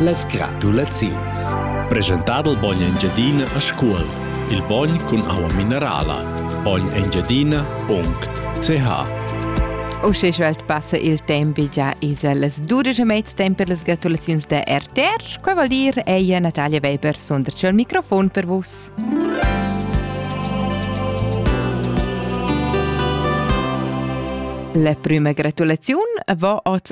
Las gratulaziuns. Presentà dal bogn Engiadina a Scuol. Il bogn cun aua minerala. bognengiadina.ch Uschè svelt passa il temp già es las dudesch e mezz temp per las gratulaziuns da RTR. Quai vuol dir ella Natalia Weber sunderci al microfon per vus. La prima gratulaziun va oz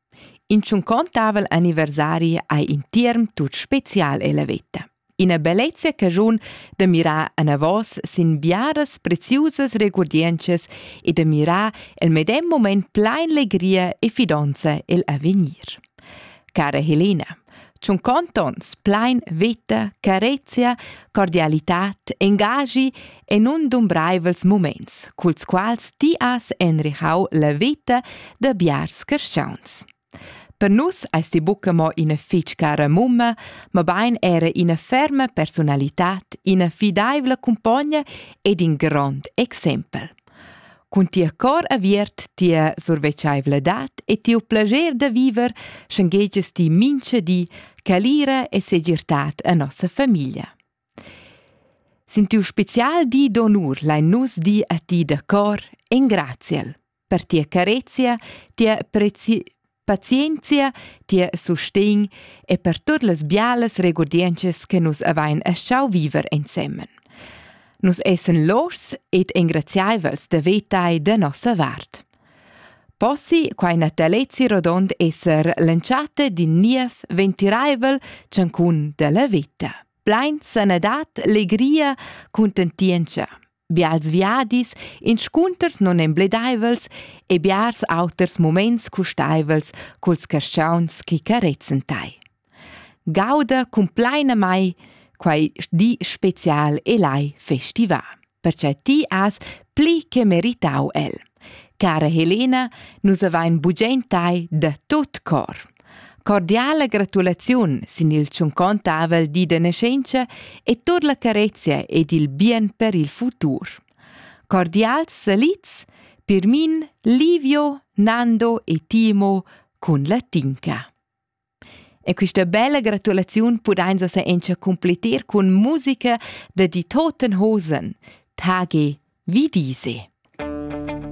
In tschuncontavel anniversari ei in tierm tut special ella veta. Ina bellezia caschun da mirar anavos sin biaras preziusas regurdientschas e da mirar el medem moment plein legria e fidonza el avegnir. Cara Helena, Tschun contonts plein veta, carezia, cordialitat, engaschi e nundumbraivels muments, culs quals ti has enrichau la veta da biars carstgauns. Per nus eis ti buca mo ina fitg cara mumma, mabain era ina ferma personalitad, ina fidaivla cumpogna ed in grond exempel. Cun tia cor aviert, tia survetscheivladad e tiu plascher da viver schenghegias ti mincha di calira e segirtad a nossa famiglia. Sin tiu special di d'onur lein nus dir a ti da cor engraziel per tia carezia, tia prezi Pazienzia, tier sustegn e per tut las bialas regurdientschas che nus avain eschau viver ensemen. Nus essen loschs ed engraziaivels da vetai da nossa vart. Possi quai natalezi rodond esser lanciate din niev ventiraivel ciancun della vita. Plein sanadad, legria, contentienza. Bials viadis, inscunters nunembledaivels e biars auters muments custaivels culs caschaunts chi carezzen tai. Gauda cumplainamai quai di special e lai festivà, perche ti has pli che meritau el. Cara Helena, nus avain bugent tai da tot cor. Cordiala gratulaziun sin il tschuncontavel di da nascenza e tur la carezia ed il bien per il futur. Cordials salits per min Livio, Nando e Timo cun la tinca. E questa bella gratulaziun pudains sa encha completer cun musica da di Totenhosen, Tage wie diese.